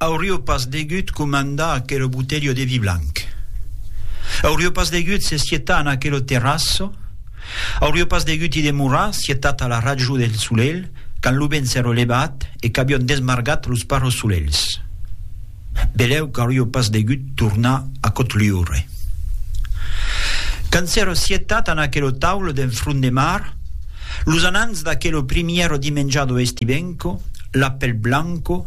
Aurio pas degut comandar aquelo botelho de vi blanc. Aurio pas degut se sietar en aquelo terrasso. Aurio pas degut i demorar, sietat a la rajo del solelh, quand lo vent s'èro levat e qu'avion desmargat los parros solelhs. Belèu qu'aurio pas degut tornar a Cotliure. Quand s'èro sietat en aquelo taulò d'en front de mar, los anants d'aquelo primièro dimenjado estivenco, l'apèl blanco,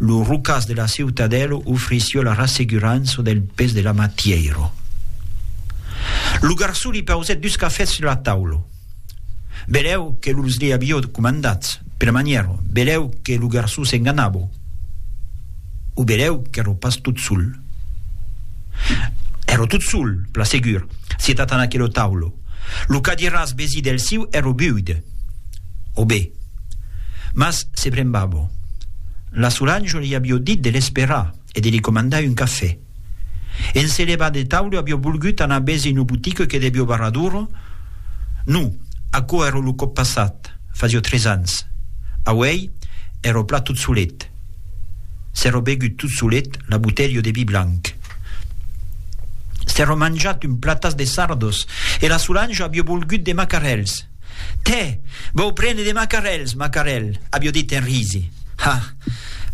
Lo rocàs de la ciutadèla ofrissió la rassegurança del pes de la matièira. Lo garçon li pausèt dus cafès sus la taula. Belèu que los li avió comandats, per manièra, belèu que lo garçon s'enganava. O belèu qu'èra pas tot sol. Èra tot sol, pla segur, sietat en aquela taula. Lo cadiràs besi del siu ero buide. O be. Mas se brembavo. La Solange li avió dit de l'esperar e de li comandar un cafè. En se levar de taule avió volgut anar besi no botique que devió barrar d'ora? No, aquò ero lo còp passat, fasió tres ans. Auei ero plat tot solet. S'èro begut tot solet la botelha de vi blanc. S'èro manjat un platas de sardos e la Solange avió volgut de macarèls. Tè! Vau prene de macarèls, macarèl! avió dit en risi. Ha!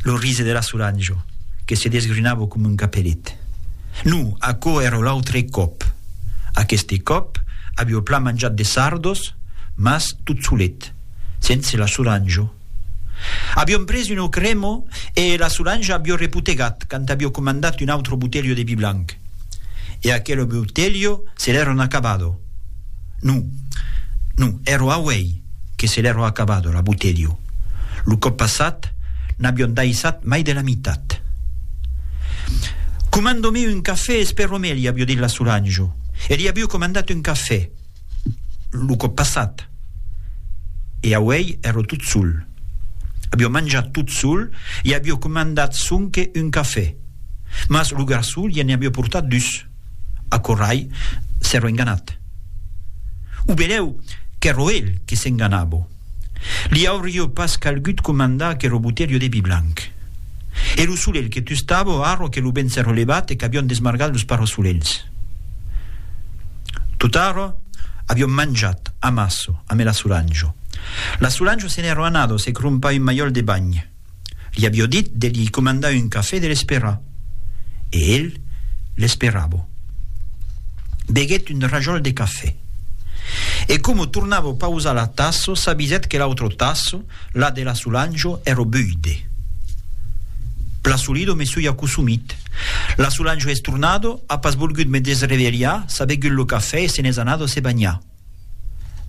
lo risi de la Solange, que se desgrinava coma un capelet. No, aquò èra l'autre còp. Aqueste còp avió plan manjat de sardos, mas tot solet, sense la Solange. Aviom pres un auc remo e la Solange avió repotegat quand avió comandat un autro botelho de vi blanc. E aquelo botelho se l'èron acabado. Non, non, èro auei que se l'èro acabado, la botelho. Lo còp passat, n'avión daissat mai de la mitat. Comando-me un cafè e espero-me, li avió dit la Solange. E li avió comandat un cafè. lo còp passat e auèi èro tot sol. Aviò manjat tot sol e aviò comandat sonque un cafè, mas lo garçon lien ne aviò portat dus. Aquò rai s'èro enganat. O benlèu qu'èro el que s'enganavo. Li aurio pas calgut comandar aquero botelho de vi blanc. E lo solelh que tustavo arro que lo vent s'erro levat e qu'avion desmargat los parosolelhs. Tot'arro, avion manjat, amasso, amé la Solanjo. La Solanjo se n'erro anados e crompa un malhòl de banh. Li avió dit de li comandar un cafè de l'esperar. E el l'esperavo. Beguèt un rajòl de cafè. E como tornavo pausar la tasso s'avisèt que l'autro tasso, la de la Sulanjo, èro buide. Plasolido me sui acosumit. La Sulanjo es tornado, a pas volgut me desrevelhar, s'a begut lo cafè e se n'es anado se banhar.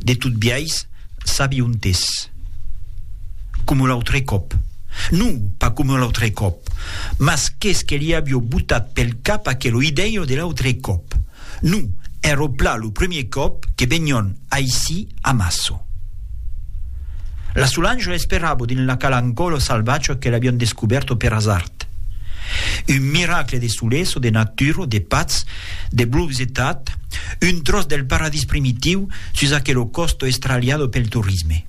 De tot biais, sabi ont es. Coma l'autre còp. Non, pas coma l'autre còp. Mas qu'es que li avió botat pel cap aquelo idèio de l'autre còp. Non, èrò plan lo premier còp que venión aicí a Maço. La Solange l'esperavo dins la cala ancòlo salvatge que l'avión descubèrto per hasard. Tat. Un miracle de soles o de natura o de patz, de blums e tat, un tròç del paradís primitiu sus aquelo còsto estralhado pel torisme.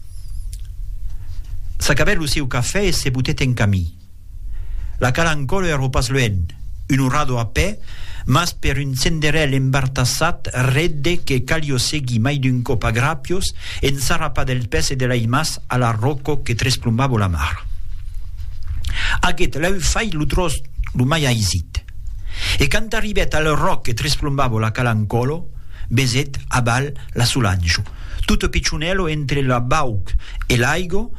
S'acabèt lo seu cafè e se botèt en camí. La cala Ancòl èra pas luènh, un orado a pè, mas per un senderèl embartassat redde que calió seguir mai d'un còp a grapiós, ensarrapat dels pès e de l'aimaç A la ròco que tresplombavo la mar. Aguet lèu fai lo tròç lo mai aisit. E quand arribèt al ròc que tresplombavo la cala Ncolo, besèt abal la Solanjo. Tot pichonèlo entre la bauc e l'aigo,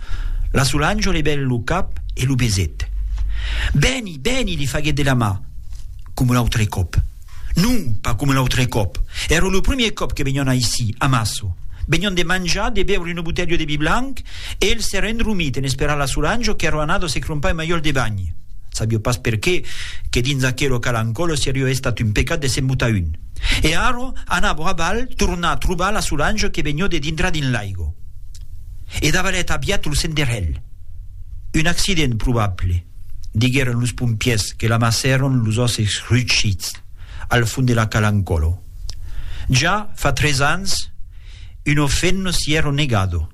la Solanjo levèt lo cap e lo besèt. Bèni, bèni, li faguèt de la mà, coma un autre còp. Non, pas coma l'autre còp. Èra lo premier còp que venion aicí, a Maço. Venion de manjar, de beure una botelha de vi blanc e el s'èra endromit en esperar la Solange qu'èra anada se crompar un malhòl de banh. Sabio pas perqué que dins aquelo calancòlo serió estat un pecat de se'n botar un. E ara anavo a balh tornar trobar la Solange que venió de dintrar dins l'aigo. E davalet aviat lo senderèl. Un accident probable. diguèron los pompièrs que l'amassèron los òsses rugits al fond de la Calancolo. Ja fa tres ans, un ofenno s'i èro negado.